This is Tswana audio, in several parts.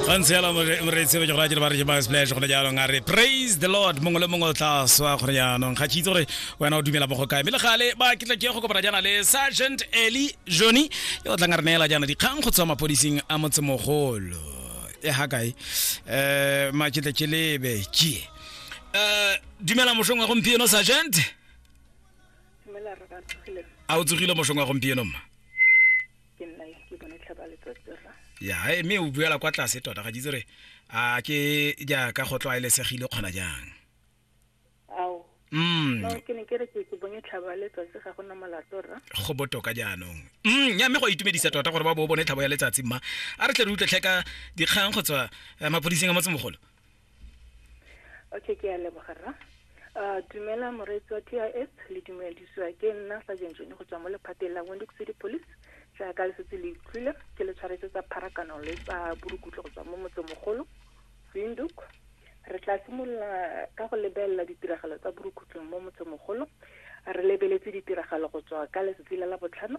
gantsi yalo moreetsi be ke gore a ke ba re ke ba splash gone jaanong a re praise the lord mongwe le mongwe o tla swa gone jaanong ga ke itse gore wena o dumela mo go kae mme le gale ba ke tla ke go kopana jaana le sergeant eli johnny yo o tlang a re neela jaana dikgang go tswa mapodising a motsemogolo e ga kae um maketle ke lebe kie um dumela mošong wa gompieno sergeant a o tsogile mošong wa gompieno mma ke nna ke bone tlhaba letsatsi ra ya e, mme o buela kwa tlase tota ga jitse re a ke jaaka go tlwaelesegile kgona jang ao mm. no ke ne ke re ke ke bonye tlhaba letsatsi ga gona molato ra go botoka jaanong mm ya mme go a itumedisa tota gore ba bo bone tlhabo ya letsatsi mma a re tle re utlwe tlheka dikgang go tswa eh, maphodiseng a motsemogolo okay ke a leboga rra uh, dumela moreetsi wa t i s le dumedisiwa ke nna sa jenjone go tswa mo lephateng la windhoek city police jaaka le setse le utlwile ke le tshwaretse tsa pharakano le tsa borukutlo go tswa mo motsemogolo windhoek re tla simolola ka go lebelela ditiragalo tsa borukhutlong mo motsemogolo re lebeletse ditiragalo go tswa ka letsatsi la la botlhano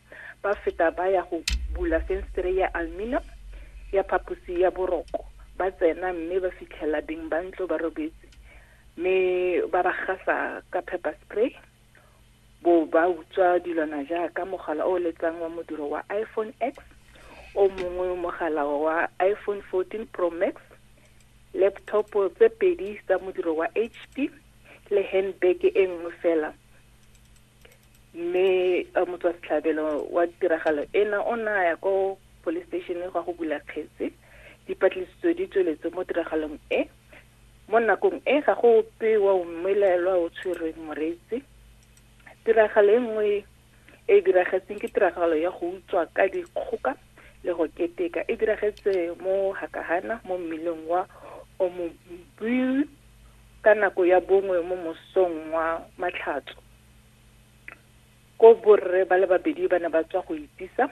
ba feta ba ya go bula fenstere ya aluminium ya phaposi ya boroko ba tsena mme ba fitlhela beng ba ntlo ba robetse mme ba ba gasa ka pepper spray bo ba utswa dilwana jaaka mogala o letsang wa modiro wa iphone x o mongwe mogala wa iphone 14 pro max laptop tse pedi tsa modiro wa hp le handbag e nngwe fela mme motswasetlhabelo wa tiragalo ena o ne a ya ko police station gwa go bula kgetse dipatlisiso di tsweletse mo tiragalong e mo nakong e ga go ope wa umelelwa o tshwerweng moreetsi tiragalo e nngwe e diragetseng ke tiragalo ya go utswa ka dikgoka le go keteka e diragetse mo hakahana mo mmileng wa omobui ka nako ya bongwe mo mosong wa matlhatso Koo borre ba le babedi ba ne ba tswa go itisa,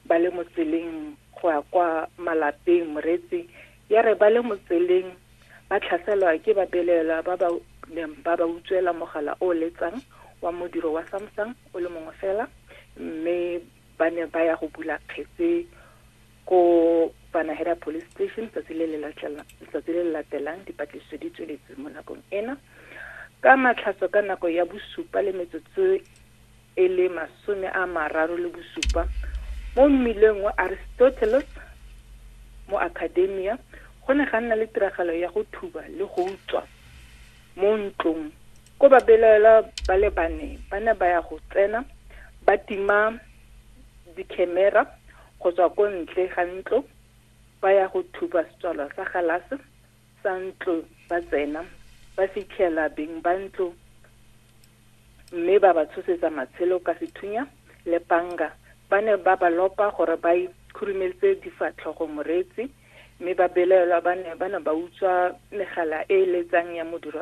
ba le mo tseleng go ya kwa malapeng, moreetsi ya re ba le mo tseleng ba tlhaselwa ke babelaelwa ba ba neng ba ba utswela mogala o o letsang wa modiro wa Samsung o le mongwe fela mme ba ne ba ya go bula kgetse Ko Panahera Police Station letsatsi le le latelang dipatlisiso di tsweletse mo nakong ena. Ka matlhatso ka nako ya bosupa le metsotso e le masome a mararo le bosupa mo mmileng wa Aristoteles mo Academia go ne ga nna le tiragalo ya go thuba le go utswa mo ntlong ko babelaelwa ba le bane ba ne ba ya go tsena ba tima dikhemera go tswa ko ntle ga ntlo ba ya go thupa setswalwa sa galase sa ntlo ba tsena ba fitlhela beng ba ntlo mme ba ba tshosetsa matshelo ka sethunya le panga ba ne ba ba lopa gore ba ikhurumeletse difatlhogo moreetsi mme ba belaelwa ba ne ba ne ba utswa megala e e letsang ya modiro